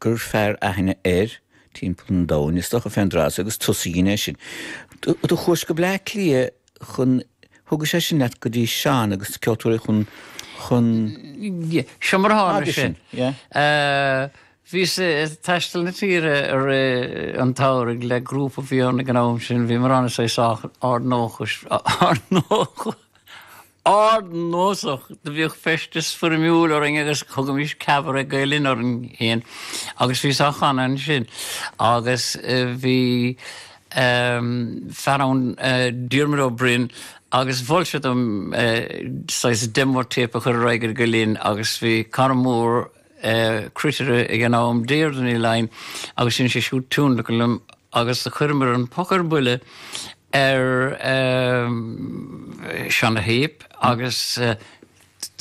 gur fearr aithne air timpeall an domhain. Is dócha fén dtráth so agus tusa a dhein é sin. Do chuais go Bleá Cliath chun, thugais é sin leat go dtí Seán agus na ceoltóirí chun, chun. Yeh, seo mar a tharla sé. Bhíos ag taisteal na tíre i rith an tsamhraidh le grúpa a bhí ann ag an am sin, bhíomar ana, sách ard-nósach, ard-nósach. Ard-nósach do bhíodh feisteas foirmiúil orainn agus thugaimís Cabaret Gael Linn orainn féin agus bhíos á chanadh ansin agus eh, bhí ehm, fear ann eh, Diarmuid Ó Broin agus mhol sé dom eh, saghas demo tape a chur ar aghaidh ar Gael Linn agus bhí cara mór eh, cruitire ag an am Deirdre Ní Fhloinn agus sheinn sí siúd tionlacan liom agus chuireamar an Poc ar Buile ar sheana-théip agus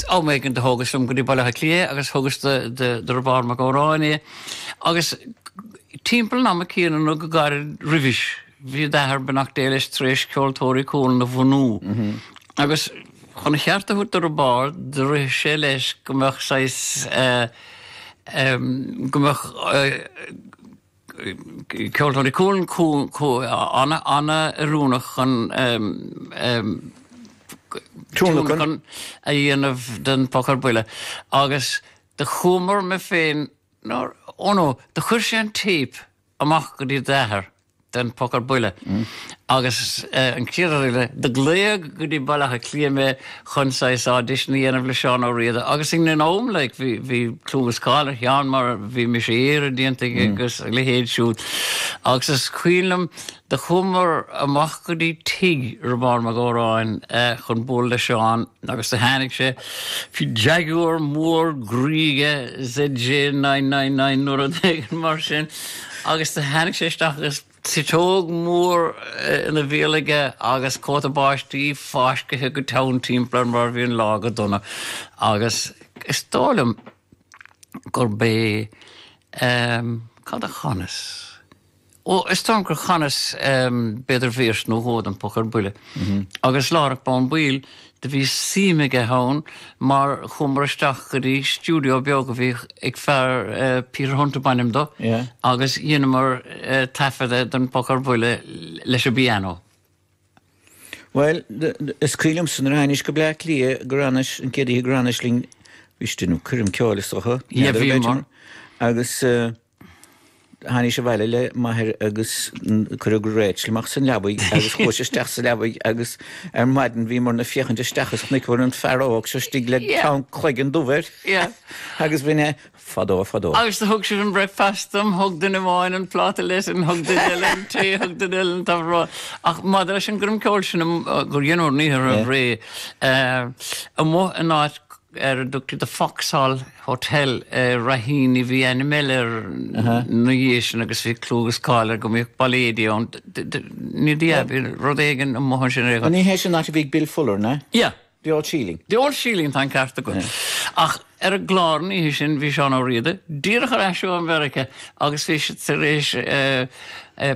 am éigin do thógas liom go dtí Baile Átha Cliath agus thugas do do Riobard Mac Góráin é agus timpeall an ama céanna nó go gairid roimhis bhí d'athair beannacht Dé leis tar éis Ceoltóirí Chualann a bhunú agus chun a cheart a thabhairt do Riobard do rith sé leis go mbeadh saghas eh, em, go mbeadh eh, Ceoltóirí Chualann ana-oiriúnach chun tionlacan a dhéanamh don Poc ar Buile agus do chuamar mé féin nó oh no do chuir sé an téip amach go dtí d'athair den Poc ar Buile agus an chéad rud eile do glaodh go dtí Baile Átha Cliath mé chun saghas audition a dhéanamh le Seán Ó Riada agus in an am like bhí bhí clú is cáil ar Sheán mar bhí Mise Éire déanta aige agus a leithéid siúd agus is cuimhin liom do chuamar amach go dtí tigh Riobard Mac Góráin eh chun bualadh le Seán agus do tháinig sé bhí Jaguar mór groí aige ZJ nine nine nine nó rud éigin mar sin agus do tháinig sé isteach agus Todóg mhór ina bhéal aige agus cóta báistí fáiscithe go teann timpeall air mar bhí an lá go dona agus is dóigh liom gurb é ehm cad a chanas? Ó is dóigh liom gur chanas ehm b'fhéidir véars nó dhó den Poc ar Buile. Agus láithreach bonn baill Do bhí suim aige ann mar chuamar isteach go dtí stiúideo beag a bhí ag fear, Peter Hunt a b'ainm dó, agus dheineamar taifeadadh den Poc ar Buile leis an bpianó. Bhuel, is cuimhin liomsa nuair a thánais go Bleá Cliath gur fhanais an chéad oíche gur fhanais linn, bhí, cúram ceoil is dócha, n'fheadar, b'fhéidir, agus. Tháinig sé abhaile le m'athair agus cuireadh Rachel amach as an leabaidh agus chuaigh sé isteach sa leabaidh agus ar maidin bhíomarna ag féachaint isteach is chonaiceamar an fear óg seo istigh le ceann cloigeann dubh air agus bhí na fadó fadó. Agus do thug siad an breicfeast dom, thug duine amháin an pláta leis thug duine eile an tae thug duine eile an t-arán ach maidir leis an gcoirm cheoil sin gur dhein ár n-athair a ré amuigh in áit ar a dtugtaí The Foxhall Hotel i Raheny. Bhí ainm eile air ina dhiaidh sin agus bhí clú agus cáil air go mbíodh bailéidí ann. Ní hea, bhí rud éigin amuigh ansin ar. Ní hé sin áit a bhí ag Bill Fuller, an ea? Yeah. The Old Shieling. The Old Shieling, tá an ceart agat. Ach ar an gclár an oíche sin bhí Seán Ó Riada díreach ar ais ó Mheiriceá agus bhí siad tar éis eh, eh,